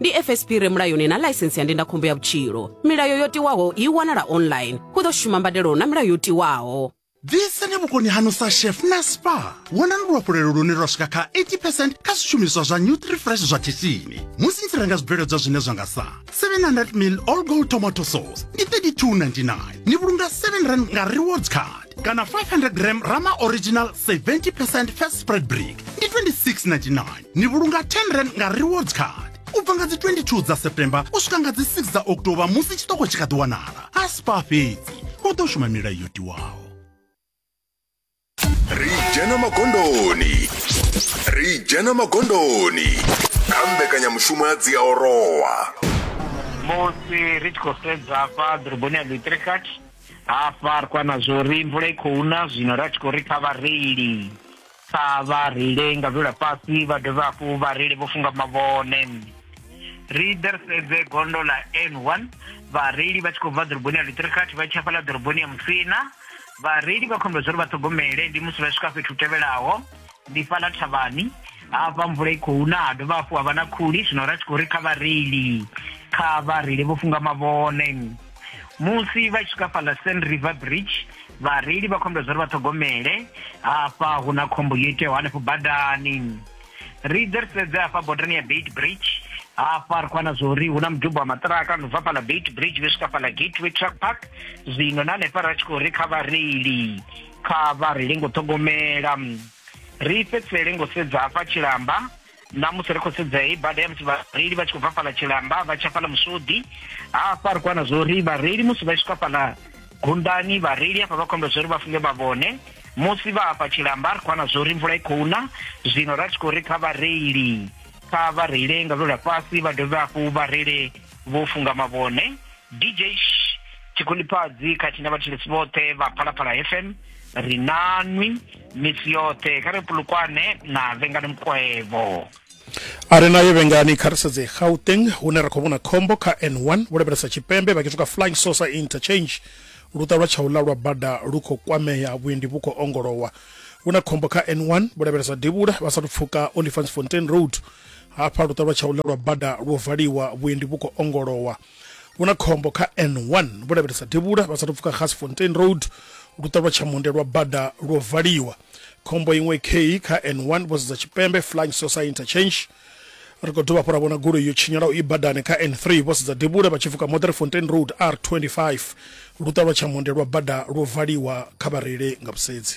ndi fsp re mulayoni na ḽaisensi ya ndindakhombo ya vhutshilo milayo yo tiwaho i wanala online hu ḓo shuma mbadelo na milayo yo tiwaho ḓisani vhukoni hanu sa chef na spa wonani luhafhulelo lune lwa swika kha 80 percent kha zwishumiswa zwa nutrifresh zwa khishini musi ni tshi renga zwibveledzwa zwine zwa nga sa 700 mil all gold tomato sauce ndi 3299 ni vhulunga 7 rand nga rewards card kana 500 gram rama original 70 percent fat spread brick ndi 2699 ni vhulunga 10 rand nga rewards card u bva nga dzi 22 dza september u swika nga dzi 6 dza october musi tshiṱoko tshi kha ḓi wanala a spa fhedzi o ḓo shuma milayo yo tiwaho ri dzhena magondoni ri dzhena magondoni kha mbekanyamushumo ya dziaorowa musi ri tshi khou sedza hafha ḓoroboni ya lutrikat hafha ri khou ana zwo ri mvula i khou na zwino ra tshi khou ri kha vhareili kha vha reile nga vhula fhasi vha dovhe hafhu vhareili vho funga mavhone ri ḓe ri sedze gondo ḽa n one vhareili vha tshi khou bva ḓoroboni ya luṱirikhathi vha tshi hafha ḽa ḓoroboni ya musina vhareili vha khombe zwo ri vha ṱhogomele ndi musi vha swika fhethu tevhelaho ndi fhaḽa thavhani hafha mvula i khou na ha dovha hafhu ha vha na khuli zwino ra tshi khou ri kha vhareili kha vhareili vho funga mavhone musi vha tshi swika fhaḽa san river bridge vhareili vha khou ambela zwa uri vha ṱhogomele hafha hu na khombo yo iteaho hanefho badani ri ḓe ri sedze hafha bodani ya bait bridge hafha ri khou wana zwa uri hu na mudubo wa maṱiraka no bva fhaḽa bait bridge vhe swika fhaḽa gateway truck park zwino na hanefha ra tshi khou ri kha vhareili kha vha reile ngo ṱhogomela ri fhedzisele ngo sedza hafha tshilamba Ṋamusi ri khou sedza heyi bada ya musi vhareili vha tshi khou bva fhaḽa Tshilamba vha tsha fhaḽa Musodi. Hafha ri khou wana zwa uri vhareili musi vha tshi swika fhaḽa Gundani, vhareili hafha vha khou ambela zwa uri vha funge mavhone. Musi vha hafha Tshilamba ri khou wana zwa uri mvula i khou na, zwino ra tshi khou ri kha vhareili kha vha reile nga lwendo lwa fhasi vha dovhe hafhu vha reile vho funga mavhone. dj tshikhulipfadzi khathihi na vhathetshelesi vhoṱhe vha phalaphala fm ri nanwi misi yoṱhe kha ri pulukwane na vhengani mukwevho a re nayo vhengani kha ri sedze gauteng hune ra khou vhona khombo kha n1 vho lavhelesa tshipembe vha khethuka flying saucer interchange luṱa lwa tshaula lwa bada lu khou kwamea vhuendi vhu khou ongolowa hu na khombo kha n1 vho lavhelesa devhula vha sathu pfuka olifants fontain road hafha luṱa lwa tshaula lwa bada lwo valiwa vhuendi vhu khou ongolowa vhu na khombo kha n1 vhu lavhelesa devhula vha sathu pfuka gasfontein road luṱa lwa tshamunde lwa bada lwo valiwa khombo iṅwe kei kha n1 vho sedza tshipembe flying sosa interchange ri khou dovha hafhu ra vhona goloi yo tshinyalaho i badani kha n3 vho sedza devhula vha tshi pfuka mother fontain road r25 luṱa lwa tshamunde lwa bada lwo valiwa kha vhareile nga vhusedzi